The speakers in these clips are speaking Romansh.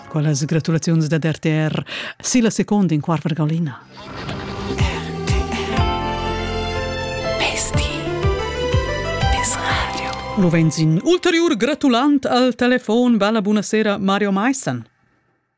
Quellas gratulaziuns dad RTR silla seconda in quart vergaulina. Lo vens in ulteriur gratulant al telefon. Bella buonasera Mario Meissen.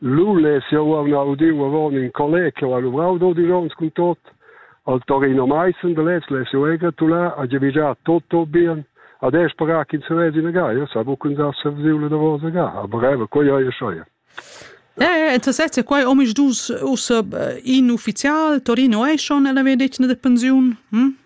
Lu less jeu aunc udiu avon in collega che ha luvrau dodisch onns cun tot, al Torino Maissen de lez less jeu engratular a giavischar Toto bien, ad esch para ch'ins vesi ina gaia, sa buca uns'arsa vesiu la davosa ga, aber breve, quei ei e schei. Eh, tu sez che quai omisdus ussa in ufficial Torino è schon ella vedetna de pensiun? Hm?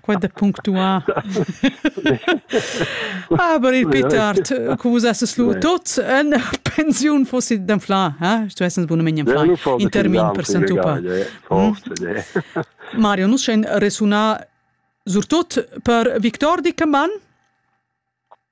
Quai da punctuar. Aber il Pitart, cum vus esses lu tot en pensiun fossi d'anflar, eh? Tu essens bunament anflar in termin percentupa. Mario, nus schein resuna surtot per Victor Dickermann.